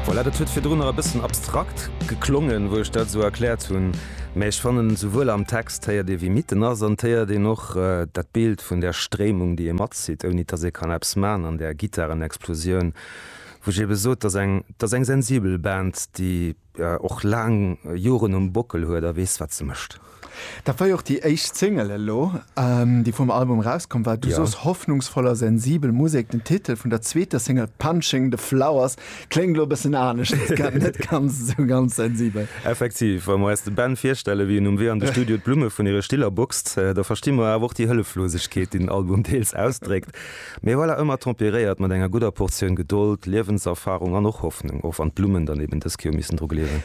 Voilà, dat huet virdrun nach e bëssen abstrakt geklongen, wou ech dat esou erkläert hunn, mä ech fannen, esouwuel am Text héiert ee, wéi mitten ass, an et héiert een och dat Bild vun där Stréimung, déi ee matzitt, ouni dass ee kann eppes man an där Gittarenexplosioun, wou ech ebe sot, dat ass eng, dat ass eng sensibel Band, déi. och laang Joren um Bockel huet a weess, wat se mécht. Dat war jo och déi éischt Single elo, déi vum Album erauskomm war. Du sos, hoffnungsvoll a sensibel Musek. Den Titel vun der zweeter Single Punching the Flowers kléngt elo e bëssen anescht, net ganz esou ganz sensibel. Effektiv. Wa mer eis de Ben virstellen, wéi en um Wee an de Studio d'Blumme vun hire Stiller boxt, da versti mer awer och déi Hëlleflosegkeet, déi den Album deels ausdréckt. Mee voilà, ëmmer temperéiert mat enger gudder Portioun Gedold, Liewenserfahrung an och Hoffnung, och wann d'Blummen dann eben dës Kéier missen dru gleewen.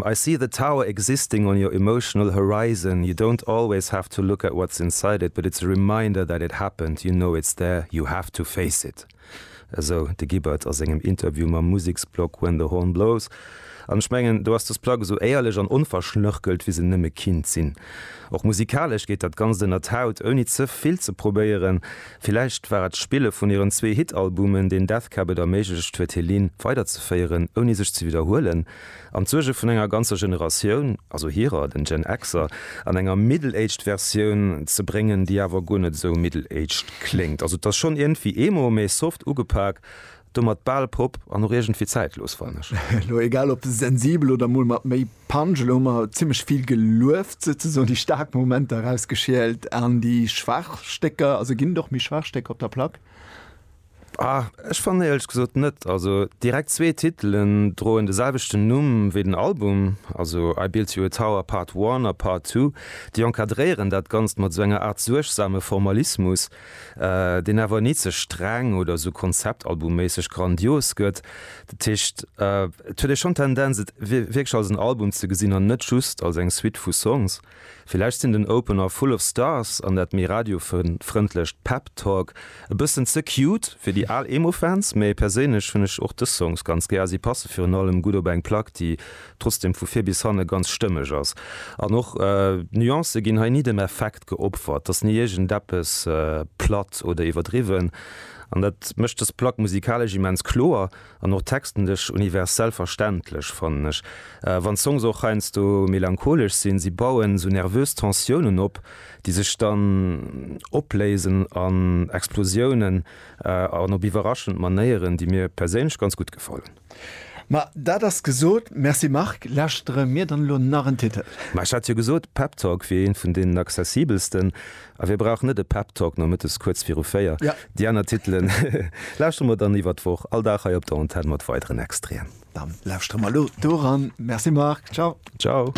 I see the tower existing on your emotional horizon, you don't always have to look at what's inside it, but it's a reminder that it happened, you know it's there, you have to face it. Esou de Gibbard a sengem Interview mam Museksblog When the Horn Blows. An ech mengen, do ass dës Plack esou éierlech an onverschnörkelt, wéi se nëmme kinnt sinn. Och musikalesch geet dat Ganzt ënnert d'Haut, ouni ze vill ze probéieren. Villäicht war et d'Spille vun hiren zwee Hit-Albumen, deen Death Cab et erméiglecht huet, hir Linn weiderzeféieren, ouni sech ze widderhuelen an d'Suerge vun enger ganzer Generatioun, also hirer, den Gen-Xer, an enger middle-aged Versioun ze bréngen, déi awer guer net esou middle-aged kléngt. Also et ass schonn iergendwéi Emo, mee soft ugepak. Domat bal Pop an och iergendwéi zäitlos, fannen ech. Elo egal op sensibel oder mol mat méi Punch, elo hu mer zimmlech vill gelueft, souzesoen déi staark Momenter erausgeschielt an déi schwaach Stécker, also ginn et och méi schwaach Stécker op der Plack? Ah, ech fannen éierlech gesot net. Also direkt zwee Titelen droen de selwechten Numm wéi den Album, also I Built You a Tower Part One a Part Two, déi encadréieren dat Ganzt mat esou enger Aart suergsame Formalismus, deen awer ni ze streng oder esou konzeptalbumméisseg grandios gëtt. Dat heescht, et huet ee schonn d'Tendenz, et wierklech als en Album ze gesinn an net just als eng Suite vu Songs. Villäicht sinn den Opener Full of Stars an dat méi radiofrëndlecht Pep Talk e bëssen ze cute fir déi al Emo-Fans, mee perséinlech hunn ech och dës Songs ganz gär a si passe virun allem gutt op eng Plack, déi trotzdeem vu vir bis hanne ganz stëmmeg ass. An och d'Nuancë ginn hei ni dem Effekt. geopfert. T'ass ni iergendeppes platt oder iwwerdriwwen an dat mécht dës Plack musikalesch immens kloer an och textenlech universell verständlech, fannen ech. Wann d'Songs och heiansdo melancholesch sinn, si bauen esou nervös Tensiounen op, déi sech dann opléisen an Explosiounen an op iwwerraschend Manéieren, déi mir perséinlech ganz gutt gefallen. Ma dat ass gesot. Merci Marc. Lauschtere mir dann elo nach en Titel. Ma ech hat jo gesot, Pep Talk wier een vun deenen accessibelsten. A wie brauch net e Pep Talk nomëttes kuerz viru véier? Jo. Déi aner Titelen lauschtere mer dann iwwer d'Woch all Dag hei op der Antenn mat weideren Extraen. Dann lauschtere mer elo doran. Merci Marc. Ciao. Ciao.